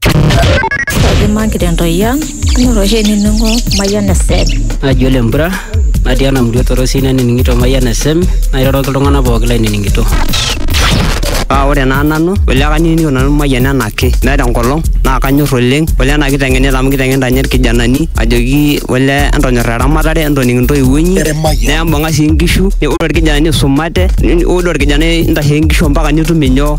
Kaji magira entoyian Ore oshi enining'o Mayian FM. Naji ole mpura natii ena murua torosi nanining'ito Mayian FM nairoroki iltung'anak pooki lainining'ito. Paa ore naa nanu ole kanining'ito nanu Mayian enaake meeta enkolong naa kanyor oleng ole ena kiteng'enita amu kiteng'enita ninye irkijanani ajoki ole entonyora eramatare entoning intoiwuo inyi nembung'a sii inkishu ore orkijanani isumate ore orkijanani intasheki inkishu ompaka nitum inyoo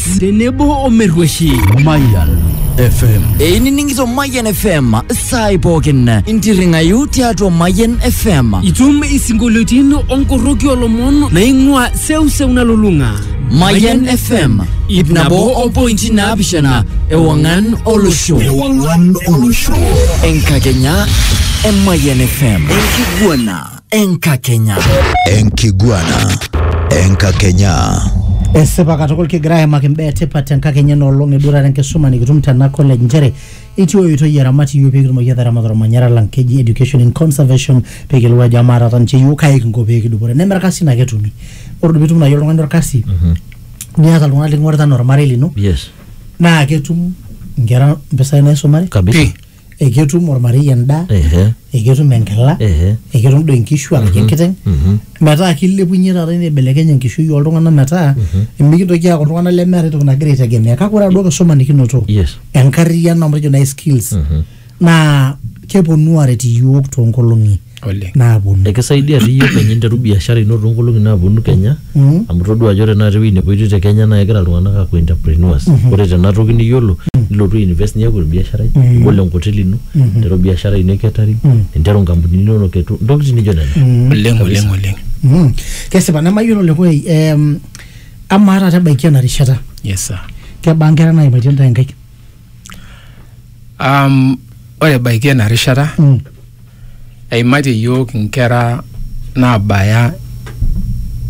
tenebo omerrueshi Mayan FM. einining'ito Mayian FM saai pookin intirring'ayu tiatua Mayian FM itum isinkolioitin onkorroki olomon naing'ua seuseu nalulung'a Mayian FM ip nabo ompointi naapishana ewang'an olosho Ewang'an olosho. enkakenya e Mayian FM enkiguana enkakenya Enkiguana. Enkakenya. esipa katukul kigira aimaki imbaa etipat tenkakenya enoolong edurare enkisuma nikitum tena college nchere etii oitoi eramati yiok peekitumoki ataramat ormanyara lang keji education in conservation pekiyiolou ajo amaa taata ninche yiok kai kinko peekidupore neme irkasin ake etumi ore pitum naaji oltung'ani orkasi niata iltung'anak liking'orita anaa ormarei lino Yes. naa ketum inkera impisai naisumare Kabisa. eketum ormarei endaa Ehe. eketum enkila Ehe. eketum doi inkishu araki enkiteng metaa kilepunye taata nibelekeny enkishui oltung'anak metaa mikintoki aaku iltung'anak lemeeta entoki nagira aitegemea kake ore aduo kisuma nikinoto Yes. enkarriyiano amu tejo naai skills naa keponu aaret iyiook toonkolong'i oleng naaponu ekisaidia dii iyie kenya interu biashara ino toonkolong'i naaponu kenya Mm. amu todua ajo ore naata ewueji nepoitoi te kenya naa kegira iltung'anak aaku entrepreneurs ore tena toki niyiolo nilotu ainvest niaku orbiasharai nibol enkoteli ino ninteru biashara ino e catering ninteru inkampunini inonok etu intokitin nijo nena oleng oleng oleng Mm. kesipa nemayiolo lekoi em, amaa taata ebaiki ena rishata yes sir kebaa nkera naimaitie ntae nkaik Um, ore ebaiki ena rishata mm. eimatie yiok inkera naabaya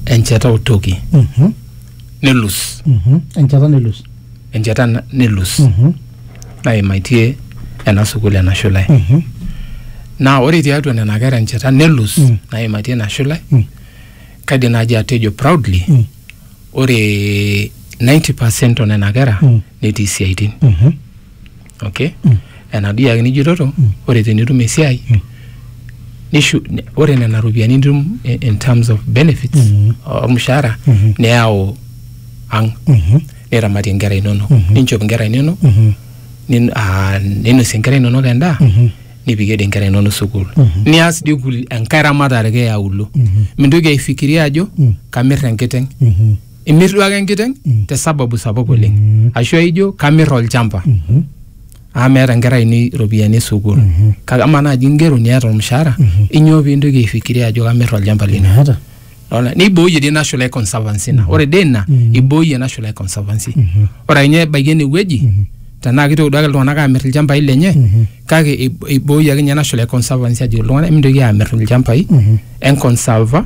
encheta otoki mm -hmm. nelus mm -hmm. encheta nelus encheta nelus mm -hmm. naimaitie ena sukuul ena shule mm -hmm. naa ore tiatua nena kera encheta nelus mm -hmm. naimatie ina shule mm -hmm. kaidim naaji atejo proudly mm -hmm. ore 90 percent o nena kera mm. netii isiaitin mm -hmm. okay mm -hmm. enaduo yake nijototo mm. ore tenitum esiai mm. nishu ore nena ropiyiani nitum in terms of benefits mm -hmm. ormushaara mm -hmm. neyau ang mm -hmm. niramatie inkera inonok mm -hmm. ninchop inkera inonok mm -hmm. ninosie inkera inonok endaa mm -hmm. nipikie dii inkera inonok sukuul nias dii kul- enkae ramatare ake eauluo mintoki aifikiria ajo kamir enkiteng imir duo ake enkiteng te sababu sapuk oleng ashu aijo kamir olchamba amu meeta inkera ainei iropiyiani e sukuul kake amaa naaji ingero niata ormushaara inyoo pintoki aifikiria ajo kamir olchamba lino Meeta. Lona, neiboyie dii National Eye Conservancy ina ore dii ina iboyie National Eye Conservancy ore akenye ebaiki enewueji tenaa kitoki duake iltung'anak aamir ilchambai lenye kake ib- iboyie akenye National Eye Conservancy ajoki iltung'anak mintoki aamir ilchambai enkonsava